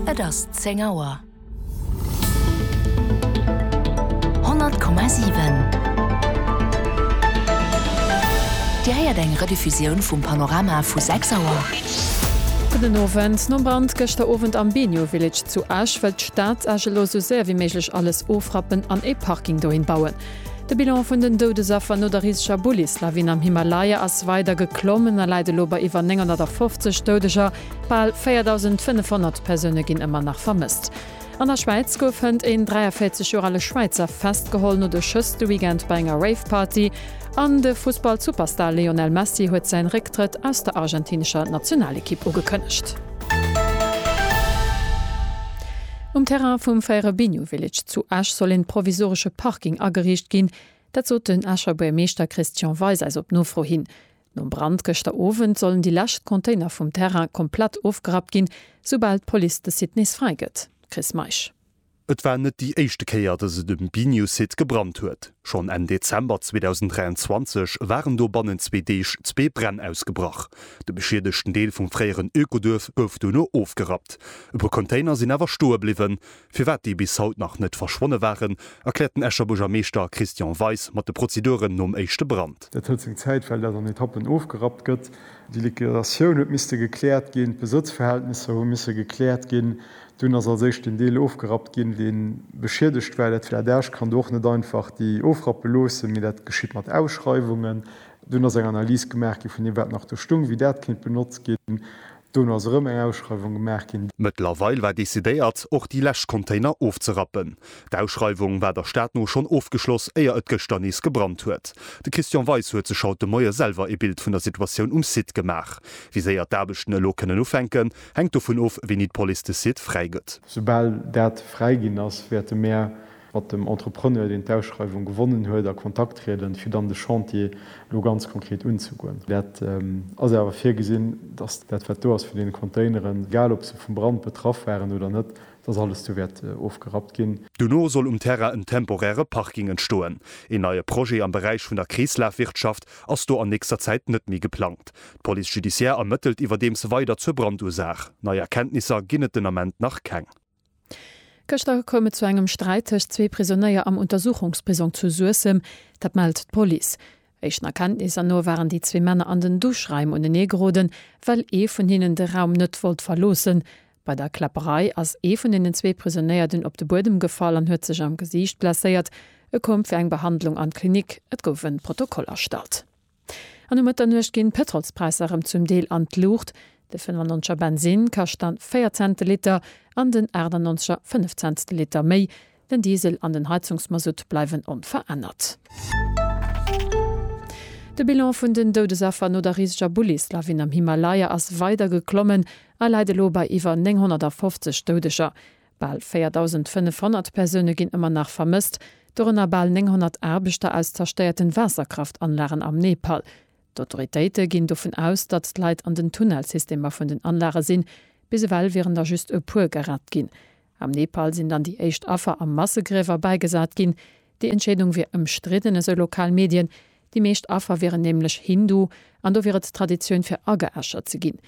Et ass zéng Auer. Honnert Komma siwen. Dir héiert eng Rediffusioun vum Panorama vu sechs Auer. Gudden Owend. Nom Brand gëschter Owend am Benio Village zu Esch wëllt d'Stad Esch elo esou séier wéi méiglech alles ofrappen an ee Parking dohin bauen. De Bilan vun den Doudesaffer no der riseger Bullis-Lawin am Himalaya ass weider geklommen a läit elo bei iwwer 950 Doudeger. Bal 4.500 Persoune ginn ëmmer nach vermësst. An der Schwäiz gouf hënt een 43 Joer ale Schwäizer festgeholl no de Schëss de Weekend bei enger Rave-Party. An de Fussball-Superstar Lionel Messi huet säin Récktrëtt aus der argentinescher Nationalekipp ugekënnegt. Um Terrain vum Fairebinho Village zu Esch soll een provisoresche Parking ageriicht ginn. Dat sot den Escher Buermeeschter Christian Weis eis op Nofro hin. Nom Brand gëschter Owend sollen déi lescht Container vum Terrain komplett ofgerappt ginn, soubal d'Police de Site nees fräi gëtt. Chris Meisch. Et war net déi éischte Kéier, datt et um Binho-Site gebrannt huet. Schonn Enn Dezember 2023 waren do bannent zwee Deeg zwee Bränn ausgebrach. De beschiedegten Deel vum fréieren Ökoduerf gouf dono ofgerappt. E puer Container sinn awer stoe bliwwen. Firwat déi bis haut nach net verschwonne waren, erkläert den Escher Buergermeeschter Christian Weis mat de Prozeduren nom éischte Brand. Dat huet seng Zäit, well dat an Etappen ofgerappt gëtt. Déi Liquidatioun huet misste gekläert ginn, d'Besëtzverhältnisser hu misse gekläert ginn. Dunn ass als éischt deen Deel ofgerappt ginn, dee beschiedegt war. Dat Flardage kann do och net einfach déi ofrappe loossen, mee dat geschitt mat Ausschreiwungen. Dunn ass eng Analys gemaach gi vun deem, wat nach do stung, wéi dat kéint benotzt ginn. Dono ass erëm eng Ausschreiwung gemaach ginn. Mëttlerweil war decidéiert, och déi lescht Container ofzerappen. D'Ausschreiwung war der Stad no schonn ofgeschloss, éier et gëschter nees gebrannt huet. De Christian Weis huet sech haut de Moie selwer ee Bild vun der Situatioun um Site gemaach. Wéi séier d'Aarbechten elo kënnen ufänken, hänkt dovun of, wéini d'Police de Site fräigëtt. Soubal dat fräiginn ass, wäerte mär mat dem Entrepreneur, deen d'Ausschreiwung gewonnen huet, a Kontakt trieden, fir dann de Chantier elo ganz konkret unzegoen. Dat ass awer virgesinn, dass dat, wat do ass vun deene Containeren, egal ob se vum Brand betraff waren oder net, dass alles do wäert ofgerappt ginn. Dono soll um Terrain en temporäre Parking entstoen. Een neie Projet am Beräich vun der Kreeslafwirtschaft ass do an nächster Zäit net méi geplangt. D'Police judiciaire ermëttelt iwwerdeems weider zur Brandursaach. Nei Erkenntnisser ginn et den Ament nach keng. Gëschter koum et zu engem Sträit tëscht zwee Prisonéier am Untersuchungsprisong zu Suessem. Dat mellt d'Police. Éischten Erkenntnisser no waren déi zwee Männer an den Duschraim unenee geroden, well ee vun hinnen de Raum net wollt verloossen. Bei der Kläpperei ass ee vun den zwee Prisonéier dunn op de Buedem gefall an huet sech am Gesiicht blesséiert. E koum fir eng Behandlung an d'Klinik. Et gouf e Protokoll erstallt. An um Mëtternuecht ginn d'Pëtrolspräisser erëm zum Deel an d'Luucht, de 95er Bensinn kascht dann 4 Cent de Liter an den 98er 5 Cent de Liter méi. Den Diesel an den Heizungsmasutt bleiwen onverännert. De Bilan vun den Doudesaffer no der riseger Bullis-Lawin am Himalaya ass weider geklommen a läit elo bei iwwer 950 Doudeger. Bal 4.500 Persoune ginn ëmmer nach vermësst, dorënner bal 900 Aarbechter aus zerstéierten Waasserkraftanlagen am Nepal. D'Autoritéite ginn dovun aus, datt d'Leit an den Tunnelsystemer vun den Anlage sinn. Bis ewell wieren der just e puer gerett ginn. Am Nepal sinn dann déi éischt Affer a Massegriewer bäigesat ginn. Déi Entscheedung wier ëmstridden, esou lokal Medien. Déi meescht Affer wieren nämlech Hindu an do wier et Traditioun fir ageäschert ze ginn.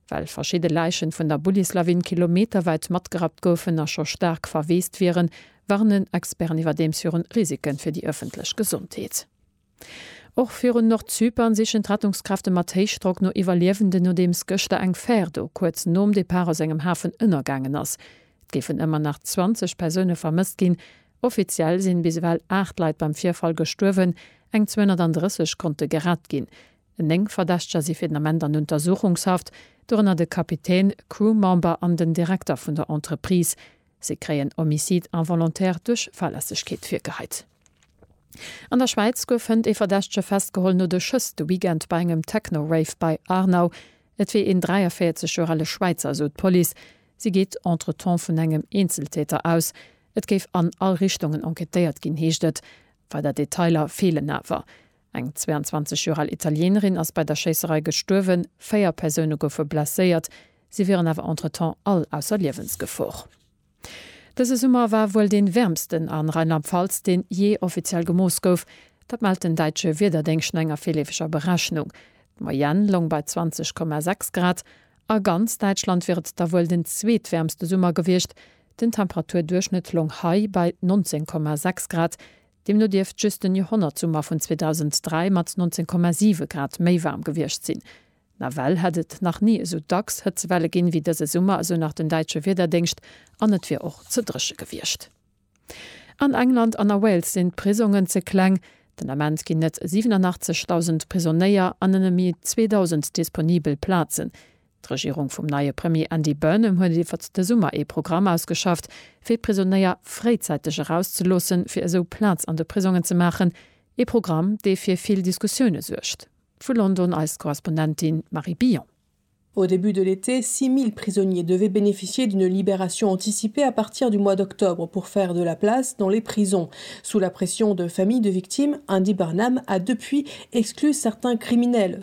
Well verschidde Läichen vun der Bullislawin kilometerwäit matgerappt goufen a scho staark verweest wieren, warnen Experten iwwerdeems viru Risiken fir déi ëffentlech Gesondheet. Och virun Nordzypern sichen d'Rettungskräfte mat Héichdrock no Iwwerliewenden, nodeems gëschter eng Fär do kuerz nom Depart aus engem Hafen ënnergaangen ass. Et géifen ëmmer nach 20 Persoune vermësst ginn. Offiziell sinn bis ewell 8 Leit beim Virfall gestuerwen, eng 230 konnte gerett ginn. Néng Verdächteger si fir den Ament an Untersuchungshaft, dorënner de Kapitän, Crew-Member an den Direkter vun der Entreprise. Si kréien Homicide involontaire duerch Fahrlässegkeet virgeheit. An der Schwäiz gouf hënt ee Verdächtege festgeholl no de Schëss de Weekend bei engem Techno-Rave bei Aarnau. Et wier een 43 Joer ale Schwäizer, esou d'Police. Si geet entretemps vun engem Eenzeltäter aus. Et géif an all Richtungen enquêtéiert ginn, heescht et. Weider Detailer feelen awer. Eng 22 Joer al Italienerin ass bei der Schéisserei gestuerwen, véier Persoune goufe blesséiert, si wieren awer entretemps all ausser Liewensgefor. Dëse Summer war wuel dee wäermsten a Rheinland-Pfalz, deen jee offiziell gemooss gouf. Dat mellt den däitsche Wiederdéngscht no enger virleefeger Berechnung. D'Moyenne loung bei 20,6 Grad. A ganz Däitschland wier et da wuel den zweetwäermste Summer gewiescht. Den Temperaturduerchschnëtt loung hei bei 19,6 Grad. Deemno dierft just den Joerhonnertsummer vun 2003 mat 19,7 Grad méi waarm gewiescht sinn. Nawell hätt et nach ni esou dacks Hëtzewelle ginn, wéi dëse Summer, esou nach den däitsche Wiederdéngscht, an et wier och ze dréche gewiescht. An England an a Wales sinn d'Prisongen ze kleng. Den Ament ginn et 87.000 Prisonéier an nëmme méi 2.000 disponibel Plazen. D'Regierung vum neie Premier Andy Burnham huet iwwert de Summer ee Programm ausgeschafft, fir d'Prisonéier fréizäiteg erauszeloossen, fir esou Plaz an de Prisongen ze maachen. Ee Programm, dee fir vill Diskussioune suergt. Vu London eis Korrespondentin Marie Billon. Au début de l'été, 6.000 prisonniers devaient bénéficier d'une libération anticipée à partir du mois d'octobre pour faire de la place dans les prisons. Sous la pression de familles de victimes, Andy Burnham a depuis exclu certains criminels.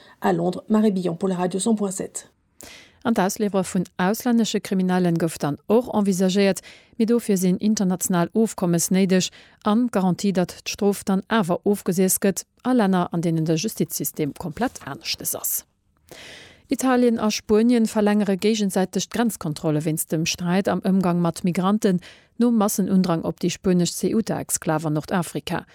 A Londres, Marie Billon pour la Radio 100.7. An d'Ausliwwere vun auslännesche Kriminellen gouf dann och envisagéiert, mee dofir sinn international Ofkommes néideg an d'Garantie, datt d'Strof dann awer ofgesiess gëtt, a Länner, an deenen de Justizsystem komplett aneschtes ass. Italien a Spuenien verlängere géigensäiteg d'Grenzkontrolle wéinst dem Sträit am Ëmgang mat Migranten nom Massenundrang op déi spuenesch Ceuta-Exklav an Nordafrika.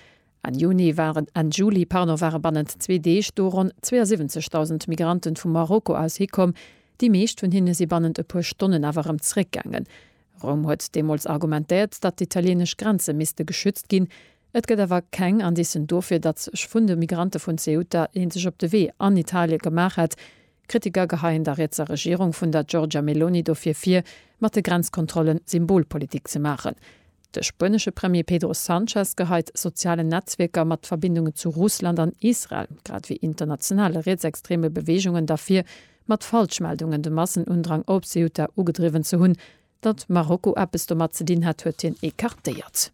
Enn Juni waren, Enn Juli, pardon, ware bannent zwee Deeg do ronn 72.000 Migranten vu Marokko aus hikomm. Déi meescht vun hinne si bannent e puer Stonnen awer erëm zeréckgaangen. Roum huet deemools argumentéiert, datt d'italieenesch Grenze misste geschützt ginn. Et gëtt awer keng Indicen dofir, datt sech vun de Migrante vun Ceuta ee sech op de Wee an Italie gemaach hätt. Kritiker geheien der rietser Regierung vun der Giorgia Meloni dofir vir, mat de Grenzkontrolle Symbolpolitik ze maachen. De spuenesche Premier Pedro Sanchez geheit sozialen Netzwierker mat Verbindungen zu Russland an Israel, grad ewéi internationale rietsextreme Beweegungen der vir, mat Falschmeldungen de Massenundrang op Ceuta ugedriwwen ze hunn. Datt Marokko eppes domat ze dinn hätt, huet hien ecartéiert.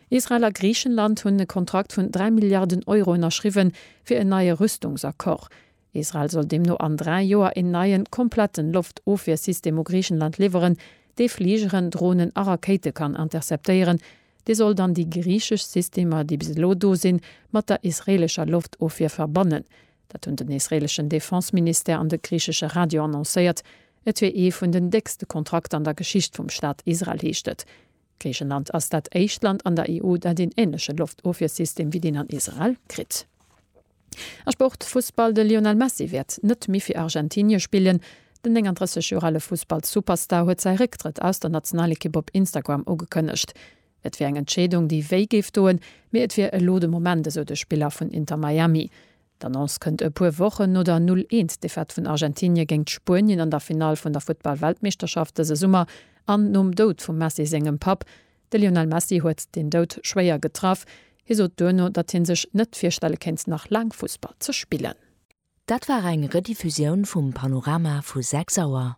Israel a Griichenland hunn e Kontrakt vun dräi Milliarden Euro ënnerschriwwen, fir en neie Rüstungsaccord. Israel soll deemno an dräi Joer een neien, kompletten Loftofwiersystem u Griichenland liwweren, dee Fligeren, Dronen a Rakéite kann interceptéieren. Dee soll dann déi griichesch Systemer, déi bis elo do sinn, mat der israeelescher Loftofwier verbannen. Dat hunn den israeeleschen Defense-Ministère an de griichesche Radio annoncéiert. Et wier ee vun den déckste Kontrakter an der Geschicht vum Staat Israel, heescht et. Griichenland ass dat éischt Land an der EU, dat een änleche Loftofwiersystem wéi deen an Israel kritt. A Sport, Fussball, De Lionel Messi wäert net méi fir Argentinie spillen. Den 39 Joer ale Fussballsuperstar huet säi Récktrëtt aus der Nationalekipp op Instagram ugekënnegt. Et wier eng Entscheedung, déi wéi géif doen, mee et wier elo de Moment, esou de Spiller vun Inter Miami. D'Annonce kënnt e puer Wochen no der Null-Eent-Defaite vun Argentinie géingt Spuenien an der Finall vun der Futtball-Weltmeeschterschaft dëse Summer an nom Doud vum Messi sengem Papp. De Lionel Messi huet deen Doud schwéier getraff. Hie sot duerno, datt hie sech net virstelle kéint, nach laang Fussball ze spillen. Dat war eng Rediffusioun vum Panorama vu 6 Auer.